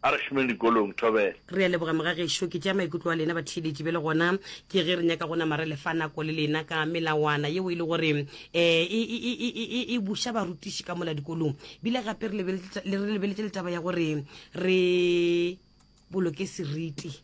A re šomeng dikolong, Thobela. Re a leboga mogagešo, ke tšea maikutlo a lena batheeletši bjale gona ke ge re nyaka go nama re lefa nako le lena ka melawana yeo e le gore um e e buša barutiši ka mola dikolong bile gape re lebeletše le taba ya gore re boloke seriti.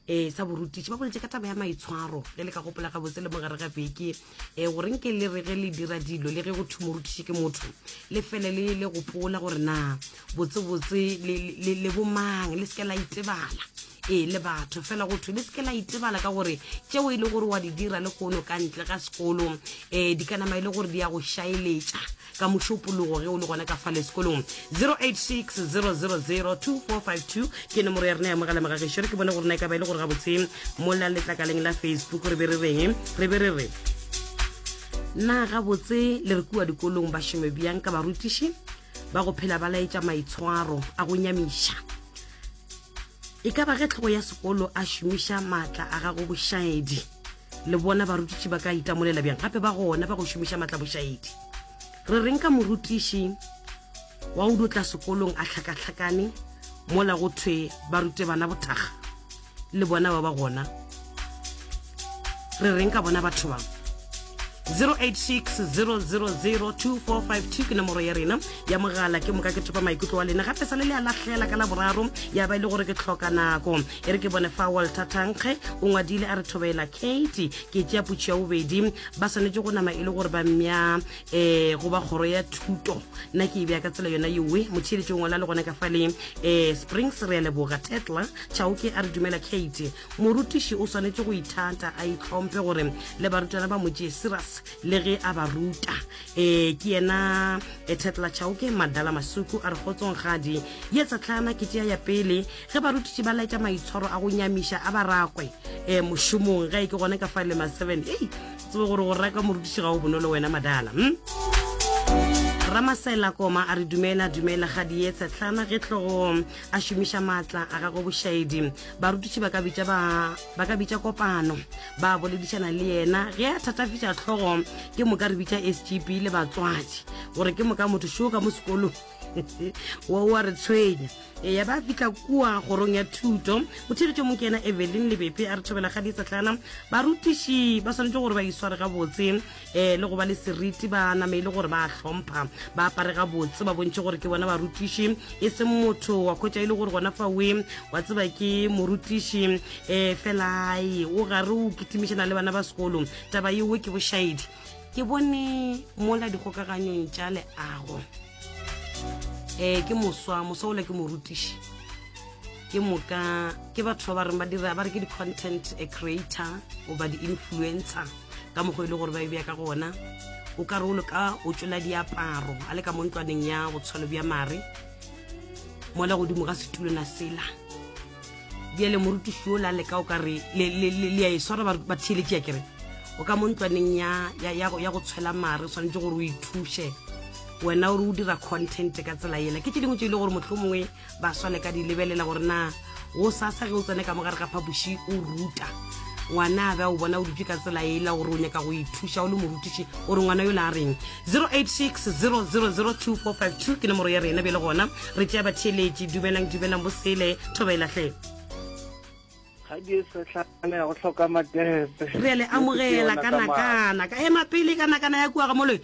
um sa borutiši ba boletše ka taba ya maitshwaro ge le ka gopola gabotse le mogare ga beke um gore nke le re ge le dira dilo le ge go thwe morutiši ke motho le fele le le gopola gore na botsebotse le bomang le seke la itebala ee le batho fela go thwe le seke la itebala ka gore tšeo e le gore wa di dira le koono ka ntle ga sekolo um di ka nama e le gore di ya go šaeletša ka mošopologo ge o le gona ka fale sekolong 0860002452 ke nomoro ya rena ya mogala mogagišo re ke bone gore na e ka ba e le gore gabotse mola letlakaleng la facebook re be re reng re be re re na gabotse le re kua dikolong ba šome bjang ka barutiši ba go phela ba laetša maitshwaro a go nyamiša E ka ba ge tlhogo ya sekolo a šomiša maatla a gago bošaedi le bona barutiši ba ka itamolela bjang gape ba gona ba go šomiša maatla bošaedi re reng ka morutiši wa o dutla sekolong a tlhakatlhakane mola go thwe ba rute bana bothaga le bona ba ba gona re reng ka bona batho bang 0860002452 ke nomoro ya rena ya mogala ke moka ke thopa maikutlo wa lena gape sa le le a lahlela ka la boraro ya ba e le gore ke tlhoka nako e re ke bone fa walter thankge o ngwadile a re thobela kate ke tšea putšo ya bobedi ba swanetše go nama e le gore ba mmya um eh, go ba kgoro ya thuto nna ke e bea ka tsela yona yowe motheeletšong wala le gone ka faleng um eh, springs re ya leboga tetla chaoke a re dumela kate Morutiši o swanetše go ithata, a itlhomphe gore le barutwana ba mo tšee serious le ge a ba ruta. Ee, ke yena eh, Thetla Chauke Madala Masuku a re kgotsong kgadi. Ye tsa tlhana ke tšea ya pele. Ge barutiši ba laetša maitshwaro a go nyamiša a barakwe eh, mošomong, ge e ke gone ka fa le ma seven. Ei, tsebe gore go raka morutiši ga o bonolo wena Madala. Hm? Ramasela Koma a re dumela, dumela kgadi ye Tshetlana ge tlogo a šomiša maatla a gagwe bošaedi barutiši ba ka bitša ba ba ka bitša kopano ba boledišana le yena ge a thatafetša tlhogo ke moka re bitša sgp le batswadi gore ke moka motho šoo ka mo sekolong wo wa re tshwenya e ya ba fitlha kua kgorong ya thuto o thiritše mo ke ena evelyn lebepe a re thobela ga di tsatlana barutiši ba swanetše gore ba isware gabotse um le go ba le seriti ba name e le gore ba hlompha ba apare ga botse ba bontšhe gore ke bona barutiši e seng motho wa khwetša e le gore gona fa we wa tseba ke morutiši um eh, felae o gare o kitimišana le bana ba sekolo taba yeo ke bošaedi ke bone mola dikgokaganyong tša leago ee eh, ke moswa moswa ole ke morutiši ke moka ke batho ba ba reng ba dira ba re ke di-content a creator goba di-influencer ka mokgwa e le gore ba e bja ka gona o ka re o leka o tšola diaparo a le ka mo ntlwaneng ya go tshwalo bja mare mola godimo ga setulona sela bjele morutiši o la leka o ka re le a e swara ba theeletše ya kere o ka mo ntlwaneng ya go tshwela mare tshwanetse gore o ithuše wena o re o dira content ka tsela ela ke tse dingwe tse e le gore motlho mongwe ba swale ka di lebelela gore na o sasa ge o tsene ka mo gare ga phapoši o ruta ngwana a be a o bona o dutse ka tsela ela gore o nyaka go ithuša o le morutiši gore ngwana yo le a reng 0860002452 ke nomoro ya rena bjale gona re tšea batheeletši dumelang dumelang bosele thoba e lahle kgadi e setlhana ya go tlhoka matepe re le amogela kanakana ka ema pele kanakana ya kua ga moloi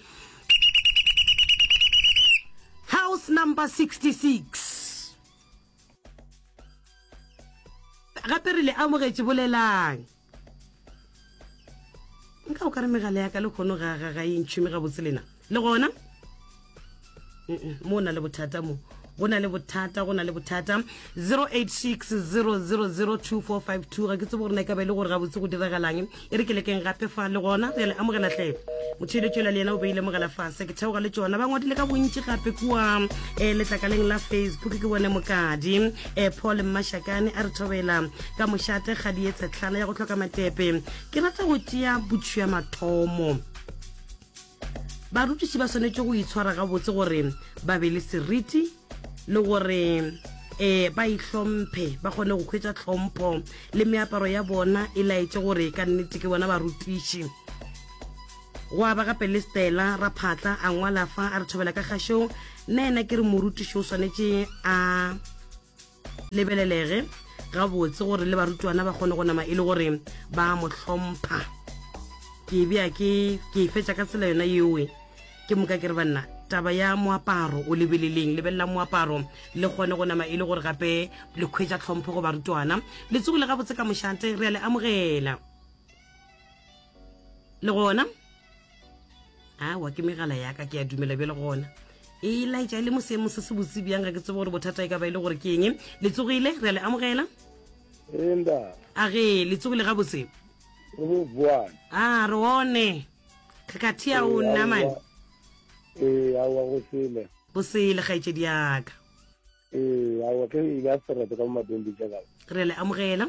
house number 66 gape re le amogetše bolelang nka o ka re megala ya ka le kgono ga ga ga e ntšhume gabotse lena le gona mo o na le bothata mo go na le bothata go na le bothata 0860002452 ga ke tsebo gore na e ka ba e le gore gabotse go diragalang e re ke lekeng gape fa le gona re le amogela tle motheletso la le yena o beile mogala fase ke theoga le tsona ba ngwadile ka bontši gape kua um letlakaleng la facebook ke bone mokadi e paul mmašakane a re thobela ka mošate ga di etsa tlhala ya go tlhoka matepe ke rata go tšea botšhua mathomo barutiši ba swanetše go itshwara gabotse gore ba be le seriti le gore um ba itlhomphe ba kgone go kgwetsa tlhompho le meaparo ya bona e laetse gore ka nnete ke bona barutiši Gwa ba gape le Stella Raphatla a ngwala fa a re thobela ka kgašong, nna ena ke re morutiši o swanetše a lebelelege gabotse gore le barutwana ba kgone go nama e le gore ba mo hlompha. Ke bea ke ke e fetša ka tsela yona yeoe ke moka ke re banna taba ya moaparo o lebeleleng lebelela moaparo le kgone go nama e le gore gape le kgwetša tlhompho go barutwana letsogo le gabotse ka mošate re a le amogela le gona awa ke megala yaka ke a dumela bjale gona e laetša e le mosemo se se botse bjang ga ke tsebo gore bothata e ka ba e le gore ke eng le tsogile re a le amogela a ge le tsogile ga botse a re one kgakgathi ya o nna mane ee awa go sele go sele kgaetšedi yaka ee awa ke ile a serete ka mo mabembe jaaka re le amogela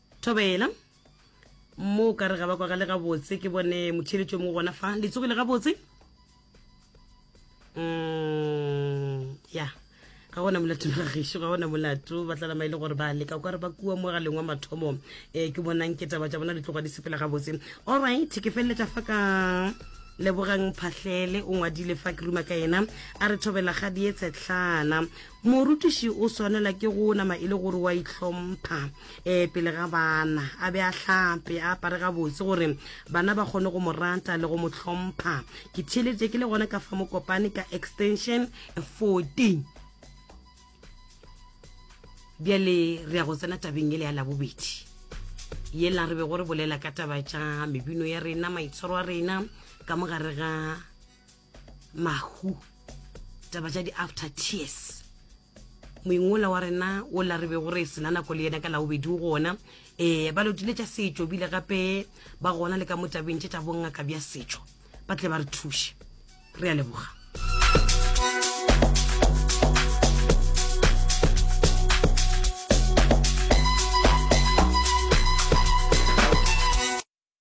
thobela mo o ka re ga ba kwagale gabotse ke bone motheletso mo gona fa le tsogile gabotse mm, ya ga gona molato ga gešo ga gona molato ba tlalama e le gore ba leka o ka re ba kua mo galeng wa mathomo um ke bonang ke taba tša bona di tloga di sepela gabotse allright ke feleletša fa ka lebogang phahlele o ngwadile fa ke ruma ka ena a re thobela ga dietshetlhana Morutiši o swanela ke go nama e le gore wa itlhompha um pele ga bana, a be a hlape, a apare gabotse gore bana ba kgone go mo rata le go mo hlompha. Ke theeleditše ke le gona ka fa Mokopane ka extension 14. Bjale re ya go tsena tabeng ele ya labobedi yela re be go re bolela ka taba tša mebino ya rena, maitshwaro a rena ka mogare ga mahu taba tša di-after tears moingwola wa rena o la re be go re sena nako le yena ka laobedi o gona um eh, ba lotile tša setšo bile gape ba gona le ka mo tabeng tše tša bongaka bja setšo ba tle ba re thuše re a leboga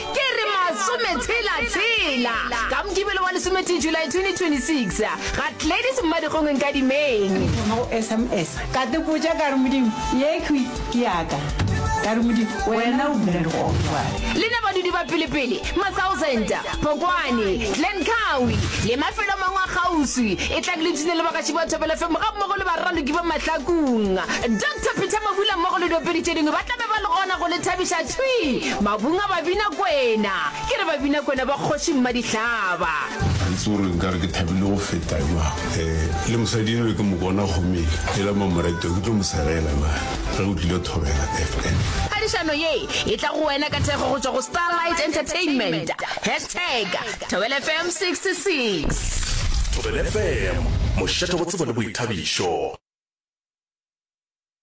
Ke re masometshela-tshela ka Mokibelo wa lesometee July 2026 ga Gladys Mmadikgong Nkadimeng. Ke thoma go sms ka te botša ka re Modimo ye khwi ke yaka ka re Modimo wena o bula dikgogo jwale. Le na badudi ba pelepele, Mathousand, Phokwane, Glen Cowie le mafelo a mangwe a kgauswi e tlabe le bina le bagaši ba Thobela FM ga mmogo le baraloki ba Mahlakung. Doctor Peter Mabula mmogo le diopedi tše dingwe ba tlabe ba le gona go le thabiša thwi. Mabunga Babinakwena, ke re Babinakwena ba Kgoši Mmadihlaba. Ga itse gore nka re ke thabile go feta jwang. E, le mosadi enwe ke mokona kgomele, e la Mamoreto ke tlo mo segela na ge o tlile thobela FM. Phadišano ye e tla go wena ka thekgo go tšwa go Starlight Entertainment. Hashtag Thobela FM 66. Thobela FM, mošate go tsebo le boithabišo.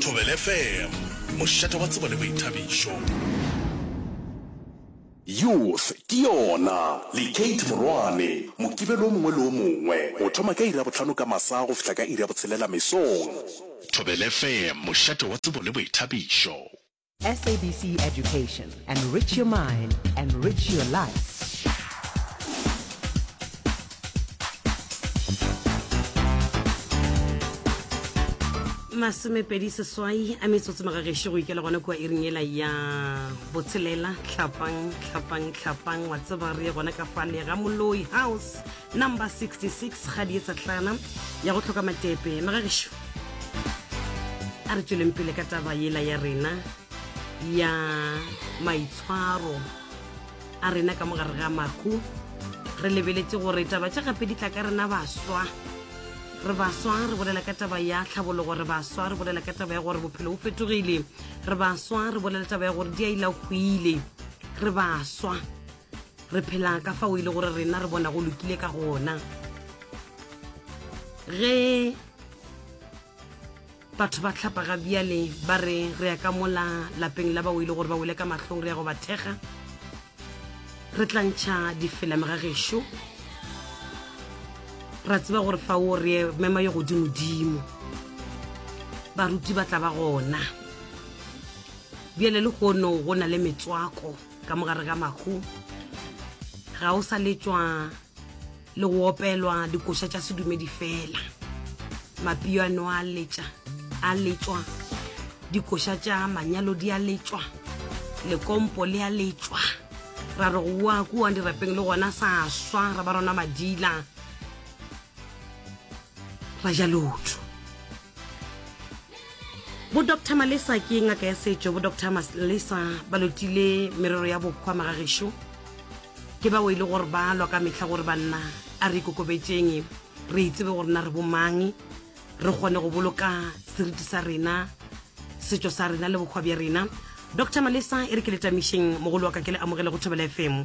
Thobela FM, mošate wa tsebo le boithabišo. Youth ke yona le Kate Morwane, Mokibelo o mongwe le o mongwe, go thoma ka iri ya bohlano ka masa go fihla ka iri ya botshelela mesong. Thobela FM, mošate wa tsebo le boithabišo. SABC Education. Enrich your mind, enrich your life. masomepedi seswai a metsotso magagešo go ikela gona kua iring ela ya botshelela tlhapang tlhapang tlhapang wa tseba re ye gona ka fale ga moloi house Number 66 ga di etsa tlana ya go tlhoka matepe magagesho a re tsweleng pele ka taba yela ya rena ya maitshwaro a rena ka mogare ga mahu re lebeletse gore taba tša gape di tla ka rena baswa re baswa re bolela ka taba ya tlhabologo re baswa re bolela ka taba ya gore bophelo bo fetogile re baswa re bolela taba ya gore di a ila hwile re baswa re phela ka fao e le gore rena re bona go lokile ka gona ge batho ba tlhapaga bjale ba re re ya ka mola lapeng la bao e le gore ba wele ka mahlong re ya go ba thekga re tlantšha difelame ga gešo ra tseba gore fa o re mema yo godimodimo baruti ba tla ba gona bjale le gono go na le metswako ka mogare ga mahu ga o sa letšwa le go opelwa dikoša tša sedumedi fela mapio a no a letša a letšwa dikoša tša manyalo di a letšwa lekompo le a letšwa ra re go wa kuwang dirapeng le gona sa swa ra ba rona madila ra ja lotho bo dr malesa ke ngaka ya setšo bo dr malesa ba lotile merero ya bokgwa magagešu ke bao e le gore ba lwa ka mehla gore banna a re ikokobetseng re itsebe gore na re bomang re kgone go boloka seriti sa rena setšo sa rena le bokgwa bja rena dr malesa e re ke letamišeng mogolo wa ka ke le amogele go thobela fm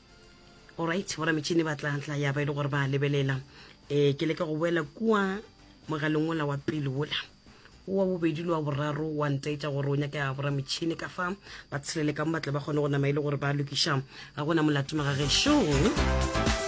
orit bora metšhini ba tlatla ya ba e le gore ba lebelela um ke leka go boela kua mogaleng ola wa pele ola wa bobedi le wa boraro wa ntaetša gore o nyaka ya bora metšhini ka fa ba tshelele ka mo batle ba kgone go nama e le gore ba lokiša ga gona molato magagešong